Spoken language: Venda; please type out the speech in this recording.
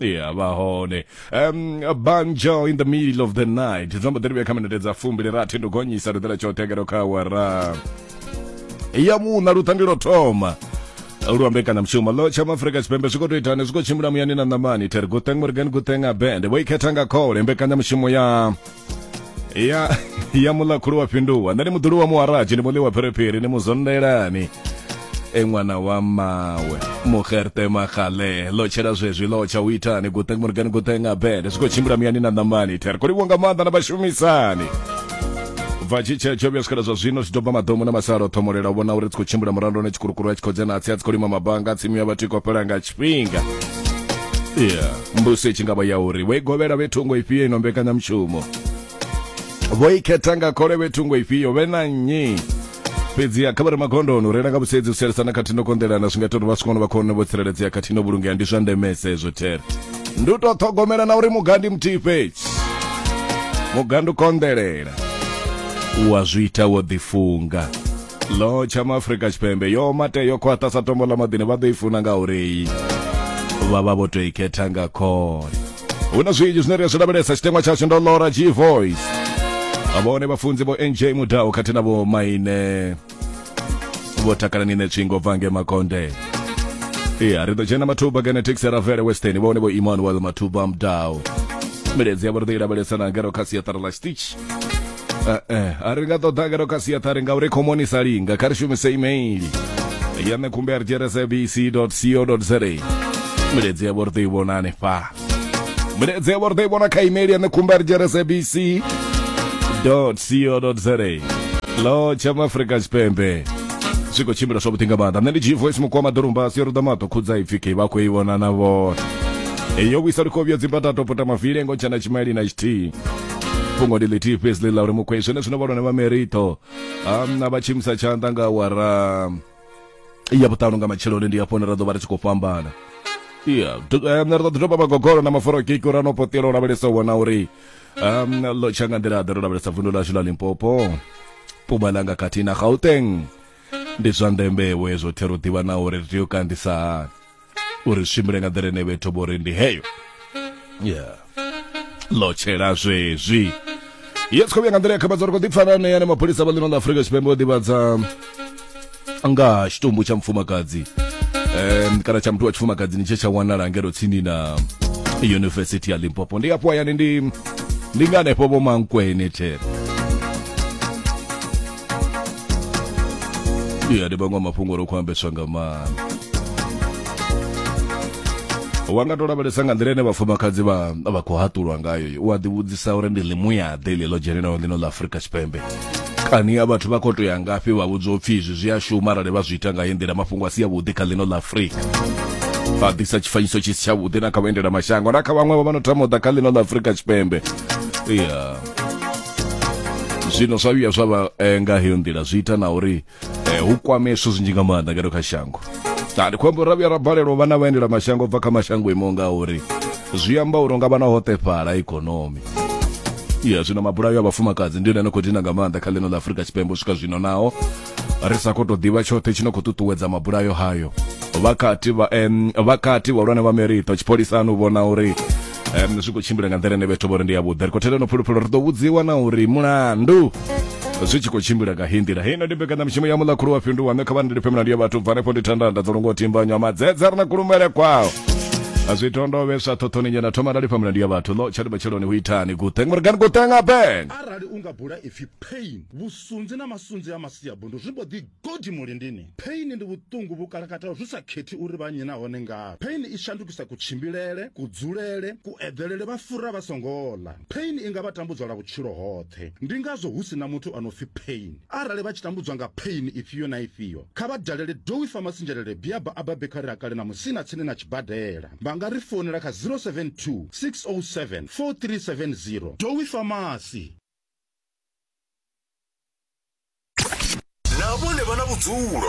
Yeah, vha hone um, banjo in the middle of the night dzamba ḓiri vhuya kha minete dza fumbili rathi ndo gonyisa ri ḓela tsho tegero kha wara ya muṋa luṱangi lwo thoma lwa mbekanyamushumo lo tsha maafurika tshipembe zwi khou tou itani zwi khou tshimbila muyani na ṋamani theri guteng morgan guteng abend vho ikhetha nga khole mbekanyamushumo ya ya ya muḽa khulu wa fhinduwa nṋe ndi muḓulu wa muharaji ndi muḽi wa phiriphiri ni muzondelani e ṅwana wa mawe muxerte maxale lo tshela zwezwi lo tsha u itani guteng murigani guteng abele zwi khou tshimbila miyani na ṋamani there kho livhuwa nga maanḓa na vhashumisani bva tshi tshe tsho vhuya swikela zwa zwino zwi doba maḓomo na masalo ṱhomolela u vhona uri tsi khou tshimbila murandoni tshikurukuru a tshi khou dzhena atsi a tsi khou lima mabanga tsimu ya vhathu i khou fhela nga tshifhinga yeah. mbuso i tshi nga vha ya uri vho i govhela vhe thungo ifhio ino mbekanyamushumo vho i khetha nga khole vhe thungo ifhio vhe na nnyi fhedziha kha vha re magondoni u reila nga vhusedzi u sielisana khathihi no konḓelana zwi nga ita uri vha swikone vha khone vho tsireledzea khathihi no vhulungea ndi zwa ndemese ezwo there ndi u tou ṱhogomela na uri mugandi muthihi fhedzi mugandi u konḓelela u wa zwi ita wo ḓifunga lo tsha maafrika tshipembe yo mate yo khwaṱha sa tombo ḽa maḓini vha ḓo i funa nga uri vha vha vho tou i khetha nga khole hu na zwinzhi zwine ri a zwi lavhelesa tshiteṅwa tshashu ndo lora g voice vhone vhafunzi vho nj mudau khathihi na vho maine vho takalani ne tswingo bva nge makonde iya ri ḓo dzhena mathuba genetics ya ravele western vhone vho emmanuel mathuba mudau miledzi yavho ri ḓo i lavhelesa na ngero kha siaṱara ḽa stitch Eh, eh, a ri nga ṱoḓa ngeno kha siaṱari ngauri khomoni sa linga kha ri shumise email ya nṋe khumbe ri dzhera sabc co za miledzi yavho ri ḓo i vhona hanefha miledzi yavho ri ḓo i vhona kha email ya nṋe khumbe ri dzhera sabc co za lo tsha maafrika tshipembe zwi khou tshimbila zwavhuḓi nga maanḓa nṋe ndi dzhii voice mukuwa maḓorumba a si yo ruḓa maṱo khudza ipfi kei vha khou i vhona na vhona eyo vhuisa likovhiyo dzimbatato pota mavile ngo ntshana tshimaili na tshithihi fhungo ndi ḽithihi fhedzi ḽi ḽa uri mukhwe zwenezwino vhalwane vha merito um, na vha tshimisa tshanḓa nga awara ya vhuṱanu nga matsheloni ndi hafho hune ra ḓo vha ri tshi khou fhambana ya ri ḓo ḓi doba magogolo na maforokiki uri a no potela u lavhelesa u vhona uri um ḽo tsha nga nḓila ḓe ro lavhelesa vundu ḽashu ḽa limpopo pumalanga khathihi na gauteng ndi zwa ndembewe zwo the ro ḓivha na uri ri tea u kandisa hani uri tshimbile nga nḓila ine vhe thoma uri ndi heyo yeah lotshela zwezwi ye tsikho vhuya nga nḓila ya khabadzo ri khou ḓipfa na ṋeya ne mapholisa vha ḽino ḽa afurika tshipembe o ḓivhadza nga tshitumbu tsha mufumakadzi um kana tsha muthu wa tshifumakadzini tshe tsha wanala ngelo tsini na yunivesithi ya limpopo ndi afho hayani ndi ndi nga hanefho vho mankwene there ya ndi maṅwe a mafhungo ro khou ambeswa nga maanḓa wa nga to lavhelesa nga nḓila ine vhafumakadzi vha vha khou haṱulwa ngayo u a ḓivhudzisa uri ndi ḽimuyaḓe ḽi ḽo dzhenenaho ḽino ḽa afurika tshipembe kani a vhathu vha khou to ya ngafhi vha vhudzwa upfhi izwi zwi a shuma arali vha zwi ita nga heyi nḓila mafhungo a si avhuḓi kha ḽino ḽa afurika vha ḓisa tshifanyiso tshi si tshavhuḓi na kha vhaendela mashango na kha vhaṅwe vha vha no tama u ḓa kha ḽino ḽa afurika tshipembe ya zwino zwa vhuya zwa vha eh, nga heyo nḓila zwi ita na uri eh, hu kwame zwithu zwinzhi nga maanḓa ngeno kha shango ndi khou amba uri ra vhuya ra balelwa vhana vhaendela mashango bva kha mashango imaho nga uri zwi amba uri nga vhana hoṱefhala ikonomi ya zwino mabulayo a vhafumakadzi ndi yone ane khou dina nga maanḓa kha ḽino ḽa afurika tshipembe u swika zwino naho ri sa khou tou ḓivha tshoṱhe tshi no khou ṱuṱuwedza mabulayo hayo vhakati vhakati vhahulwane vha merito tshipholisani u vhona uri um, zwi khou tshimbila nga nḓila ine vhethu vhori ndi yavhuḓi ri khou thela no phuluphulo ri ḓo vhudziwa na uri mulandu zwi tshi khou tshimbila nga hei nḓila heino ndi mbekanyamushumo ya muḽa khulu wa fhindu waṋe kha vha ndilifhe milandu ya vhathu bva hanefho ndi thandanda dzo longo timbanywa madzedza ri na kulumele kwao zwi tondove sa thothoni nyana thoma nda lifha milandu ya vhathu ḽo tsha libatsheloni hu itani guteng murigani guteng aben arali u nga bula ipfi pain vhusunzi na masunzi a masiabundu zwi mbo ḓi Kodi muli ndini? Pain ndi vhuṱungu vhu kalakataho zwi sa khethi uri vha nnyi nahone ngavhi. Pain i shandukisa kutshimbilele, kudzulele, kueḓelele vha fura vha songo ḽa. Pain i nga vha tambudza lwa vhutshilo hoṱhe. Ndi ngazwo hu si na muthu a no pfi pain. Arali vha tshi tambudzwa nga pain ifhio na ifhio, kha vha dalele Dowie Pharmacy Njelele Biaba a bva Bekhari ha Kale na Musina tsini na tshibadela. Vha nga ri founela kha 072 607 4370. Dowie Pharmacy. na vhone vha na vhudzulo